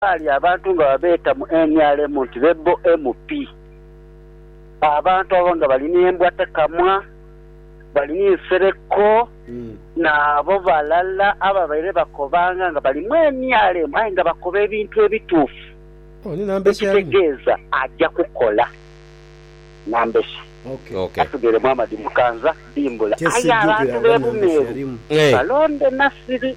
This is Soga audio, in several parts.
Ghali abantu nga babeeta mu nrm nti be bo MP. Abantu abo nga bali n'embwa tekamwa, bali ni nsereko n'abo balala ababaire bakobanga nga bali mu nrm aye nga bakoba ebintu ebituufu ekitegeeza aja kukola nambesa. Atugheeremu amadimukanza dimbula aye abantu b'e Bumeeru balonde Nasiri.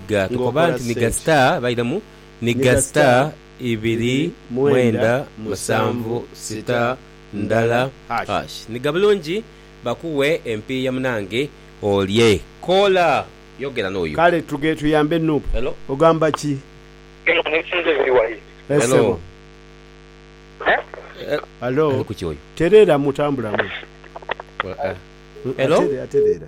Ga tukoba nti ni ga star bairemu ni ga star ibiri mwenda musanvu star ndala hash ni ga bulungi bakuwe empiiya munange olye koola yogera noyo. Kale tuge tuyambe nup. Ogamba ki? Eh sebo. Hello. Tereeramu tambulamu. Atere atereera.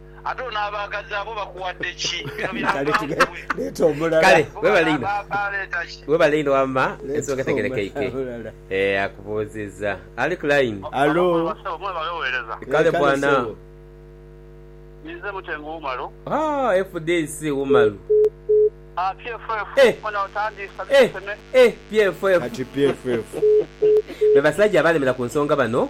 Ate ono abaagazi abo bakuwadde ki? Bino bya nva nkubwe. Kale, webale inho. Webale inho wamma, ensonga etegerekeike. Eeh, akubuuzizza. Ali ku line. Hallo. Kale bwana. Haa, FDC Wumalu. Eh, eh, eh, PFF. Be basajja abalemera ku nsonga bano.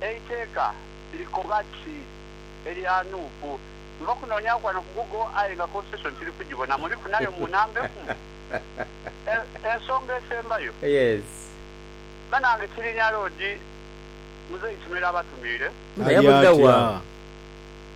Eiteeka likoba ki elya Nuupu? Nva kunoonyaku ghano ku Google aye nga Constitution tiri kugibona. Muliku nayo mu namba ekumu? Ensonga esembayo. Yes. Banange Kirinya Road Muzeeyi Kimera abatumiire. Aye atya?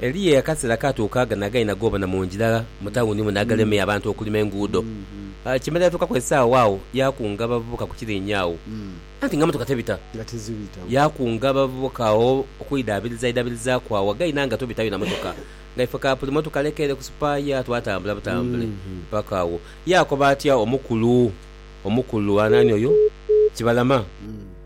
Eliya yakasera kaatuuka agha n'aghali nagoobana mu ngira mu tawuni muno aghalemye abantu okulima enguudo. Kimera yatuukaku esaawa agho yaakunga abavubuka ku kiriinye agho, anti nga motoka tebita. Yaakunga abavubuka agho okwidhaabirizaidhabirizaaku agho aghali n'aghali nga tobitayo na motoka. Nga ife ka buli motoka leka ere ku sipaaya, twatambula butambule paka agho. Yaakoba atya omukulu omukulu? Anaani oyo? Kibalama.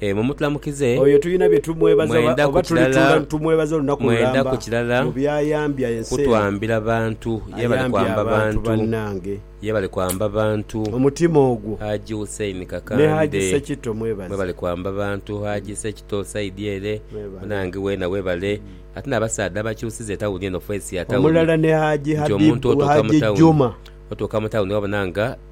Ee, mumutulamukize. Oyo tulina bye tumwebaza oba, Mwenda ku oba kilala, tulituula ni tumwebaza olunaku mwenda ku lulamba kilala, mu by'ayambya ensi eno. kutwambira bantu. Yebale Ayambye kwamba abantu bantu. bannange. Yebale kwamba bantu. Omutima ogwo. Haji Hussein Ne Kakande. Haji Sekitto mwebaze. Mwebale kwamba bantu. Haji Sekitto side ere, Mwebale. munange weena webale. Ate n'abasaadha abakyusiza etawuni eno, face ya tawuni. Omulala ne Haji Nti omuntu Habibu, otuuka mu Haji tawuni. Juma. Otuuka mu tawuni wabona nga.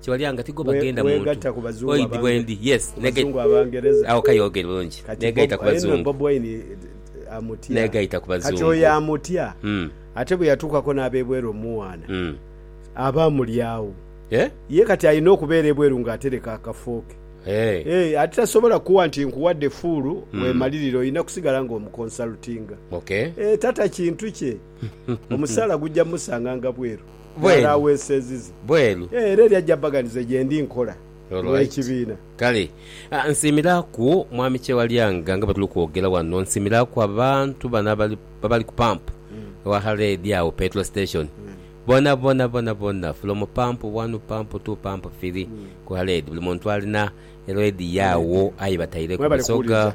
kyebalyanga tigwo bagenda muntu oidhi bwendi yes agho kaye ogere bulungi negaita kubazungu negaita kubazungu kati oyo amutya ate bweyatukako nabebweru omuwaana aba amulyagho ye kati alina okubeera ebweru nga atereka akafooke ate tasobola kuwa nti nkuwadde fuulu wemalirire olina kusigala nga omukonsalutinga tata kintu kye. Omusaala guja musanganga bweru bwa laawensenzi ze. Era eria jabaganiza ye ndi nkola n'ekibiina. Kale nsiimiraku Mwami Kyewalyanga nga bwe tuli kwogera wano, nsiimiraku abantu bano abali ku pampu ewaghara eri agho, petrol station, bonabona bonabona from pampu wanu, pampu tu, pampu firi ku ghara eri buli muntu alina eroedi ye agho aye bataireku Busoga.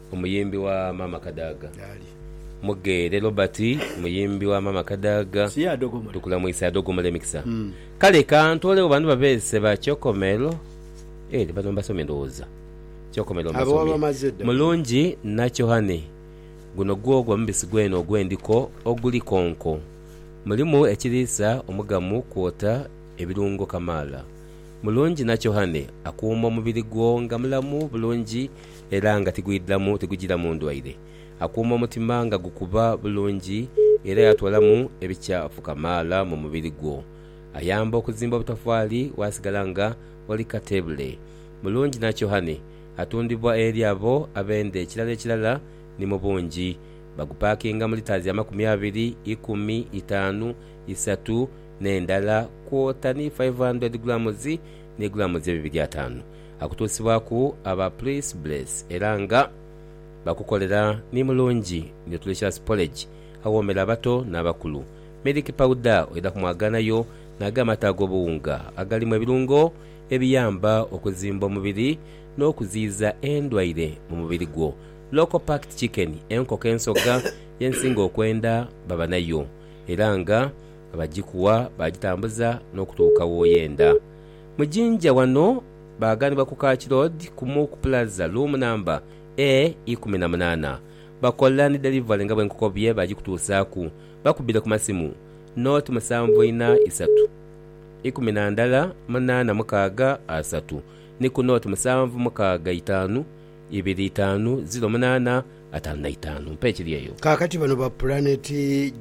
Omuyimbi wa Maama Kadaga. Yaali. Mugheere Robert, muyimbi wa Maama Kadaga. Siye adogomola. Tukulamwise adogomola emikisa. Kale ka ntoolegho bano babeese ba Kyokomelo. Eeh bano mbasomye ndowooza. Kyokomelo mbasomye. Abo wabamaze dda. Mulungi Nakyohani, Guno gwo gwa mubisi gwene ogw'endiko oguli konko. Mulimu ekiriisa omugamu kwota ebirungo kamaala. Mulungi Nakyohani akuuma omubiri gwo nga mulamu bulungi. era nga tigwidhamu tigujiramu ndwaire, akuuma omutima nga gukuba bulungi era yatwalamu ebikyafu kamaala mu mubiri gwo. Ayamba okuzimba obutafaali waasigala nga oli kateebule. Mulungi na kyohani atundhibwa eri abo ab'enda ekirala ekirala ni mu bungi. Bagupakinga mu lita dha makumi abiri, ikumi, itaanu, isatu n'endala kwota ni 500 grammes ni grammes ebibiri ataanu. akutuusibwaku aba Please Bless era nga bakukolera ni mulungi nutritious porridge awoomera abato n'abakulu. Milk powder oidha kumwagaanayo n'ago amata ag'obuwunga agalimu ebirungo ebiyamba okuzimba omubiri n'okuziyiza endwaire mu mubiri gwo. Local packed chicken, enkoko ensoga ye nsinga okwenda baba nayo era nga abagikuwa bagitambuza n'okutuuka w'oyenda. Mu jinja ghano baaganibwa ku Kaki Road kumu ku pulaza, luumu namba A ikumi na munaana. Bakola ni delivery nga bwenkukobye baagikutuusaaku. Bakubire ku masimu, Nooti musanvu ina isatu, ikumi na ndala munaana mukaaga asatu ni ku nooti musanvu mukaaga itaanu ibiri itaanu ziro munaana ataanu na itaanu. Mpa ekiri eyo. Kaakati bano ba Planet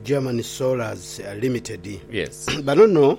German Solarz Limited. Yes. Bano no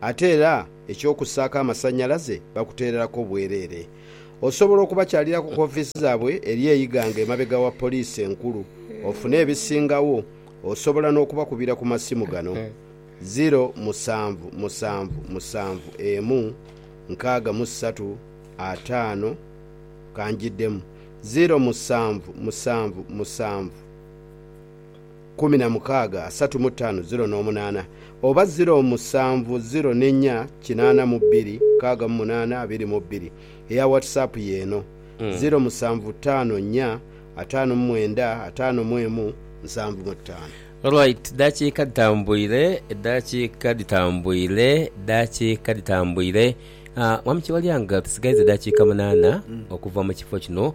Ate era eky'okussaaku amasannyalaze bakuteereraku obwereere. Osobola okubakyaliraku ku ofiisi zaabwe eri e Iganga emabega wa poliisi enkulu ofune ebisingawo. Osobola n'okubakubira ku masimu gano, ziro musanvu musanvu musanvu emu nkaaga mu ssatu ataano, ka njiddemu, ziro musanvu musanvu musanvu. kumi na mukaaga asatu mu taanu ziro n'omunaana, oba ziro musanvu ziro n'ennya kinaana mu bbiri mukaaga mu munaana abiri mu bbiri. Eya WhatsApp y'eno, ziro musanvu taano nnya ataanu mu mwenda ataano mu emu nsanvu mu ttaano. Alright eddakiika dhitambwire, eddakiika dhitambwire, eddakiika dhitambwire. Mwami Kyewalyanga tusigaiza eddakiika munaana okuva mu kifo kino.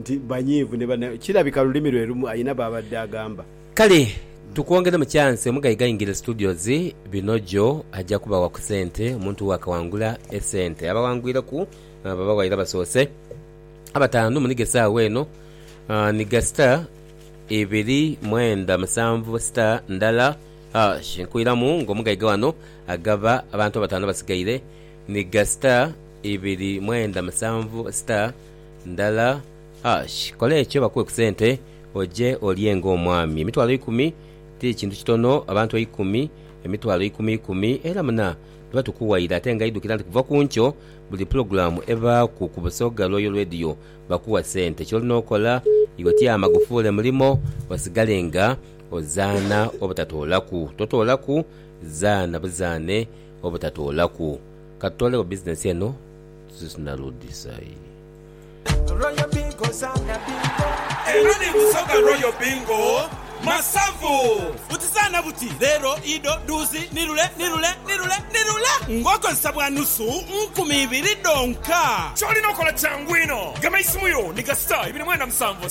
nti banyiivu ni banaku. Kirabika lulimi lwe lumu alina b'abadde agamba. Kale tukwongeremu kyansi omugaiga aingire studios Binojo aja kubawa ku sente omuntu wo akawangula esente. Abawangwireku babawaire abasoose abataanu munigho esaawa eno nigha star ibiri mwenda musanvu star ndala hash nkwiramu nga omugaiga wano agaba abantu abataanu abasigaire nigha star ibiri mwenda musanvu star. ndala ash kola ekyo bakuwe ku sente oje olye nga omwami emitwalo eikumi ti kintu kitono abantu eikumi emitwalo eikumi ikumi era muna tuba tukuwaire ate nga idhukira nti kuva ku nkyo buli pulogulamu ebaaku ku Busoga Royal Radio bakuwa sente kyolina okola iwe tyama gufuule mulimo osigale nga ozaana obutatoolaku totoolaku zaana buzaane obutatoolaku katutoolegho bizinesi eno. Eno ni Busoga Royal Bingo Masavu. Butizaana buti, Leero, ido, duuzi, ni lule, ni lule, ni lule, ni lule ng'okozesa bwa nusu nkumi ibiri dhonka. Ky'olina okola kyangu inho. Gema eisimu yo ni kasita ibiri mwenda musanvu.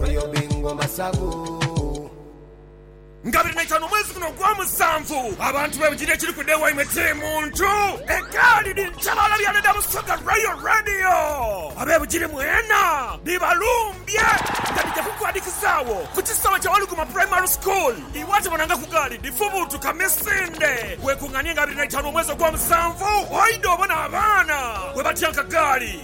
Royal Bingo Masavu. Nga biri naitano omwezi guno ogwa musanvu, abantu bebujire ekiri ku day waimwe kiri muntu egaali dhi nkyabaala byaana dha Busoga Royal Radio. Abebujire mwena dhibalumbye nga dhija kukwadhikizaagho ku kisaawe kya Waluguma Primary School. Iwe ate bonanga ku gaali dhifubuutuka misinde, wekunganie nga biri naitano omwezi ogwa musanvu oidhe obone abaana bwebatyanka gaali.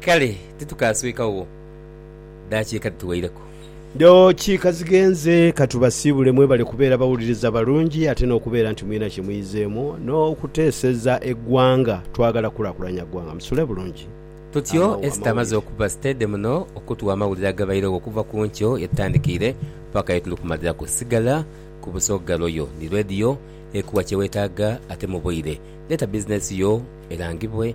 Kale titukaaswekagho daakiika dhituweireku. Daakiika zighenze, ka tubasiibule. Mwebale kubeera bawuliriza balungi ate n'okubeera nti mwina kye muyizeemu n'okuteeseza eggwanga. Twagala kukulakulanya ggwanga. Musule bulungi. Tutyo Esther amaze okuba siteede muno okutuwa amawulire agabairegho okuva ku nkyo ye tutandikiire paka ye tuli kumaliraku. Sigala ku Busoga Royal ni Radio ekuwa kye weetaaga ate mu bwire. Leeta bizinensi yo erangibwe.